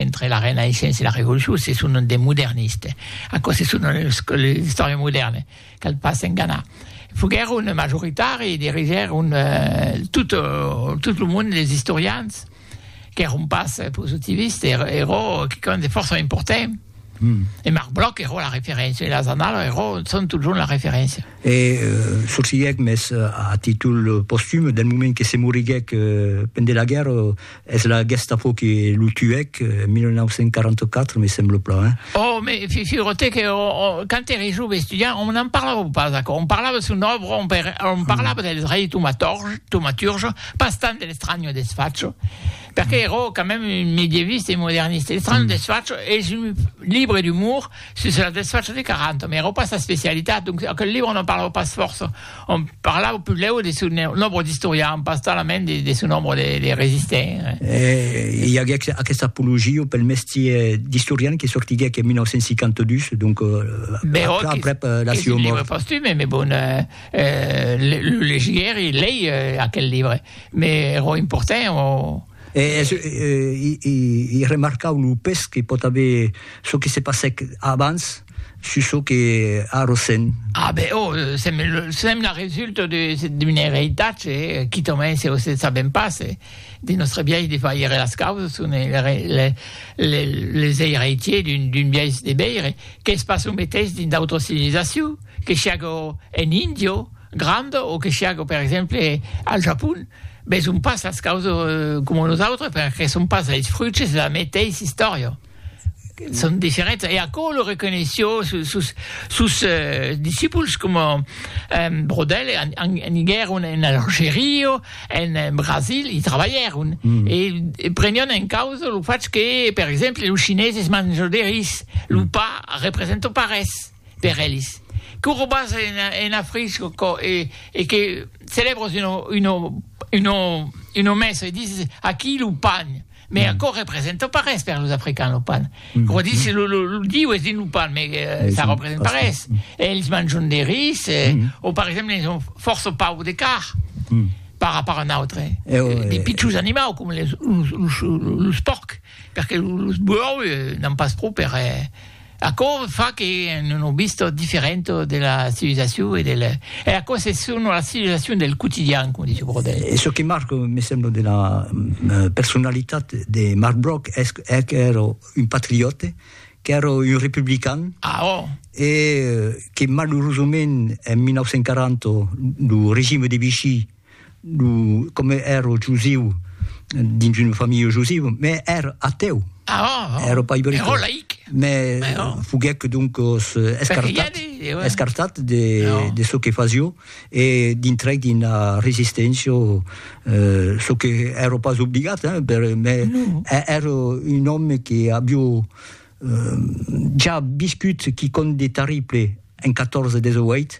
entre la Renaissença e la Revolucion se sonan de moderniste, aquò se sonan los que les istòriens modèrnes, cal pas s'enganar. Foguèron majoritari e dirigèron tot tot lo mond les istorians qu'èron pas positivistes, èra ero quicòm de fòrça important e Marc Bloch ero la referéncia e las annalas ero son totjorn la referéncia. E sorsilhèc, mès a títol postum, del moment que se moriguèc pendent la guèrra, es la Gestapo que lo tuèc, en 1944, me sembla plan, hein? Oh, me figure-te que quand ère jove estudiant, on n'en parlava pas aquò, on parlava de son òbra, on parlava del rei tomaturge, pas tant de l'estranho desfacho, perque ère quand même un medieviste e moderniste, l'estranho desfacho es un libre d'umor, Sus la desfacha de Caranto, mai èra pas sa specialitat, donc aquel libre non parlava pas fòrça, òm parlava puslèu de son nombre d'istorians, pas talament de son nombre de resistents. E i aguèc aquesta apologia pel mestier d'istorian que sortiguèc en 1952, donc aprèp la siua mòrt. Libre postume, mai bon, lo legiguèri, lei aquel libre, mai èra important o. E es i remarcau lo pes que pòt aver çò que se passèc abans sus çò que a Rossend. Ah ben, oh, sèm la resulta d'un eritatge quitament se vos ne sabèm pas, de nòstre biais de faire las causas, son les eiritiers d'un biais de veire, qu'es pas lo meteis dins d'autras civilisacions. Que siágo en Índia granda o que siágo, per exemple, al Japon, veson pas las causas coma nosautres perque son pas es fruits de la meteissa istòria. Son diferents. E aquò lo reconeishió sos sos discipuls coma Brodel, aniguèron en Algeria, en Brasil, i trabalhèron e prenián en causa lo fach que, per exemple, los chineses manjan de ris, lo pa representa pas res. per elis, que o robas ena frisco co e e que celebros uno uno uno uno mes e dis aqui lo pan, me aquò representa pas res per los africans lo pan, o dis lo lo lo diu es dins lo pan me ça representa pas res, elis manjon de ris e o per exemple elis son fòrça paur de car par rapport a n'autre, de pichons animau coma los los los pòrc, perque los buòu n'an pas pro per Aquò fa que en un obist diferent de la civilizacion e del... E aquò se son la civilizacion del quotidian, com dice Brodel. E çò que marca, me sembla, de la personalitat de Marc Broc es qu'èra un patriote, qu'èra un republican. Ah, oh! E que, malurosament, en 1940, lo regime de Vichy, Lo, comme ero jusiu, dins una familha jusiu, me ero ateu. Ah, oh, oh. Ero pas ibric. Ero laic. Me Mais oh. foguec donc os escartat, de, ouais. escartat de, oh. de ce que fasio e dintrec d'una resistència, euh, ce que ero pas obligat, hein, per, me no. ero un homme que abio euh, ja viscut quicòm de terrible en 14-18,